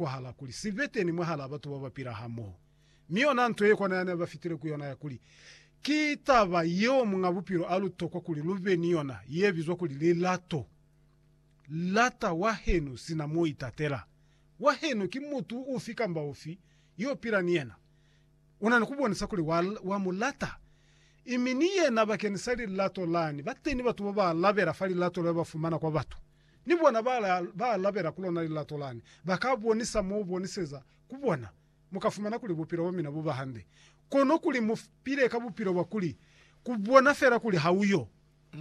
kwahala kuli si be teni mwahalaa batu ba ba pila hamoho. Mi yona nto ye kona yani a ba fitile ku yona ya kuli, Ki taba yeo Muñ'a Bupilo a lu tokwa kuli lu be ni yona, ye bizwa kuli lilato. Lata wahenu sina m'o itatela. Wahenu ki mutu ufi kamba ufi y'o pila ni yena. U na ni ku bonisa kuli wa, wa mu lata. I mi ni yena bakeñisa lilato lani, ba teni batu ba ba alabela fa lilato le ba fumana kwa batu. Ni bona ba ba alabela ku lona lilato lani, ba ka bonisa mo boniseza ku bona. Mu ka fumana kuli bupilo bwa mina bu ba hande, kono kuli mu pile ka bupilo bwa kuli ku bona fela kuli ha uyo.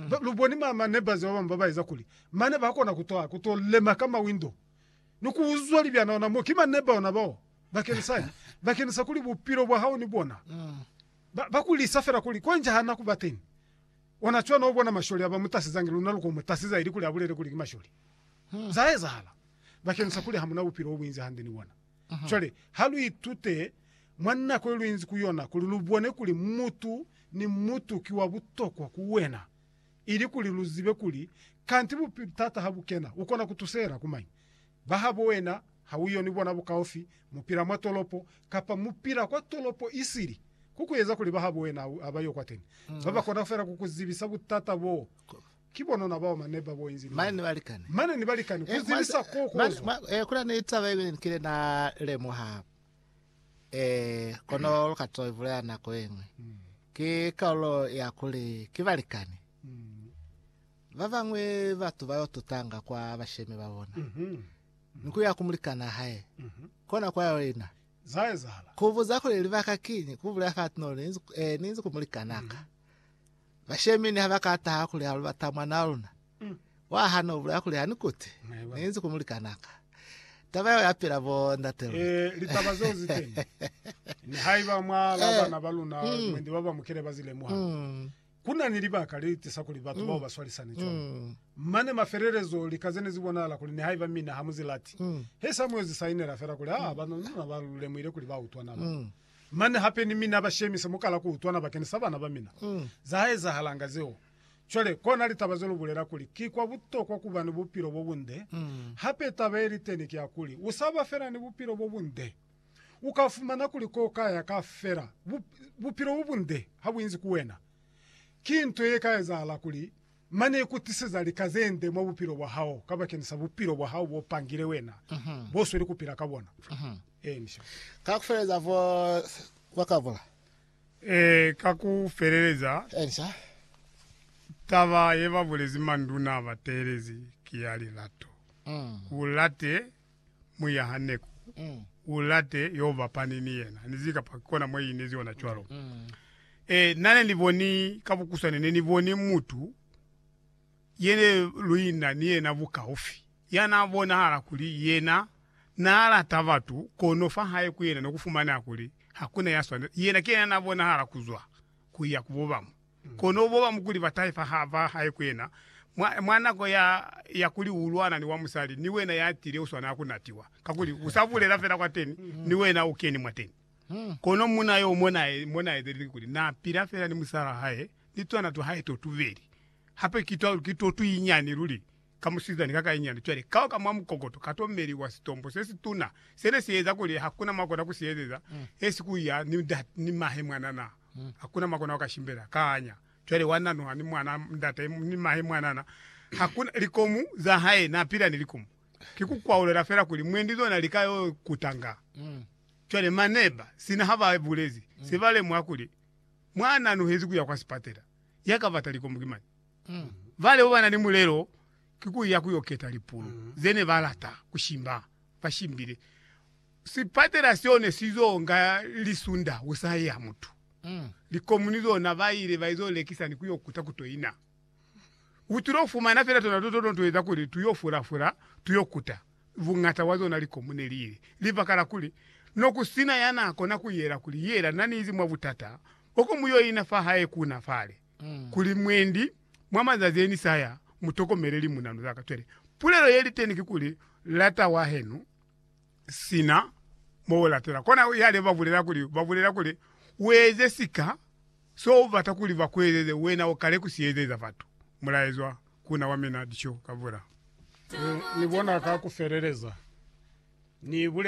Ba, lu boni ma, ma neighbors ba bañwi ba ba eza kuli mane ba kona ku twa, ku to lema ka mawindo ni ku uzwa libyana ona mo. Ki ma neighbor ona bao, bakenisani, bakenisa kuli bupilo bwa hao ni bona ba, ba ku lisa fela kuli kwa nja ha na ku ba teñi. Ona cwana ubona masholi aba mutasizangi luna luko mutasiza ilikuli abulele kuli ki masholi. Za ezahala bakeni sa kuli hamuna bupilo obuinzi hande ni bona. Cwale ha lu itute mwa nako ye luinzi ku yona kuli lu bone kuli mutu ni mutu ki wa butokwa ku wena, ilikuli lu zibe kuli kanti bupilo, taata ha bu kena, ukona kutusela ku mañi? Ba habo wena Ha u yo ni bona bukaufi, mu pila mwa tolopo, kapa mu pila kwa tolopo isili, ku ku eza kuli bahabo wena u ba yo kwateni. Ba ba kona feela ku ku zibisa butata boo. Ki bonona bao mane ba bo inzi ni Mane ni bona. balikani. Mane ni balikani, ku zibisa koo ku Mane, ozwa. mwa, kuna ni taba iñwi ni kile na lemuha, eh, kono lu ka to i bulela nako yeñwi. Ki kaulo ya kuli ki balikani. Ba bañwi batu ba yo tutanga kwa bashemi ba bona. ni ku ya ku mulikanaa hae, kona kwa ya yena ku buza kuli libaka kiñi ku bulela fati no ni inzi, eh, ni inzi ku mulikanaa ka. Bashemi ni ha ba ka taha kuli ha lu bata mwana wa luna, wa ha no bulela kuli ha ni kuti ni inzi ku mulikanaa ka. Taba yeo ya pila bo ndate luna. Eh, litaba zeo zi teni. Nihaiba mwa la bana ba luna mwendi ba ba mukele ba zi lemuha, Ku na ni libaka le li tisa kuli batu bao ba swalisane cwañi. Mane mafelelezo, lika ze ne zi bonahala kuli nihaiba mina ha mu zi lati, he sa mu yo zi sainela fela kuli, aa, ba nuna ba lu lemuhile kuli ba utwana bao. Mane hape ni mina ba shemise mu kala ku utwana bakeni sa bana ba mina. Za ha ezahalanga zeo. Cwale, kona litaba ze lu bulela kuli ki kwa butokwa ku ba ni bupilo bo bunde. Hape taba ye li teni ki ya kuli, u sa ba fela ni bupilo bo bunde. U ka fumana kuli ko ka ya ka fela bupilo bo bunde ha bu inzi ku wena. Ki nto ye ka ezahala kuli mane iku tiseza lika ze nde mwa bupilo bwa hao kabakeni sa bupilo bwa hao bo pangile wena, bo sweli ku pila ka bona. Ee, ka ku feleleza bo ba ka bula. Ee, ka ku feleleza. Ee, taba ye ba bulezi manduna a ba teelezi ki ya lilato. U late muyaha neku mm. ulate yo bapani ni yena nizi kapa kona mwe inezi yona cwalo mm. mm. e nane ni boni ka bukuswane ne ni boni mutu yene luina ni yena bukaufi yana bonahala kuli yena na lata batu kono fa hae ku yena no kufumana kuli hakuna ya swana yena ke yena na bonahala kuzwa ku ya ku bobamu, kono bobamu kuli ba taifa ha ba hae ku yena, mwa, mwa nako ya, ya kuli u lwana ni wa musali, ni wena ya tile u swanela ku natiwa, kakuli u sa bulela fela kwateni, ni wena u keni mwateni. Kono munna yo mo na, mo na etelile kikuli, na pila fela ni musal'a hae, ni twana twa hae to tubeli, hape ki twa, ki to tu inyani luli. ka musizani ka kainyana cwale kao ka mwa mukokoto ka tomeli wa sitombo se situna sene si eza kuli hakuna makona ku si ezeza esi ku ya ni ndate ni mahe mwanana hakuna makona waka shimbela kaanya cwale wa nanuha ni mwana ndate ni mahe mwanana hakuna likomu za hae na pila ni likomu ki ku kwaulela fela kuli mwendi zona lika yo kutanga cwale maneba sina ha ba bulezi se ba lemuha kuli mwa nanuhezi ku ya kwa sipatela ya ka bata likomu ki mani Bale bobana ni mulelo ki kuya kuyo keta lipulu zene balata kushimba. Bashimbile sipatela seo ne sizo nga lisunda usahe ya mutu. Likomuni zona baile baizo lekisa ni kuyo kuta kutoina. Utulo fumana fela tona toto no tueza kuli tuyo fula fula tuyo kuta. Bungata wa zona likomu neliile libaka la kuli no kusina yana kona kuyela kuli yela naniizi mwa butata boko muyoina fahae kuna fale. kuli mwendi mwa mazazi eni saya mu tokomele limunanu zaka cwale pulelo yeli teni kikuli lata wahenu sina mo u latela kona yale ba bulela kuli ba bulela kuli ueze sika so u bata kuli ba kuezeze wena u kale ku si ezeza batu mulaezwa kuna wa mina dico ka bula. Ni bona ka ku feleleza ni bulele.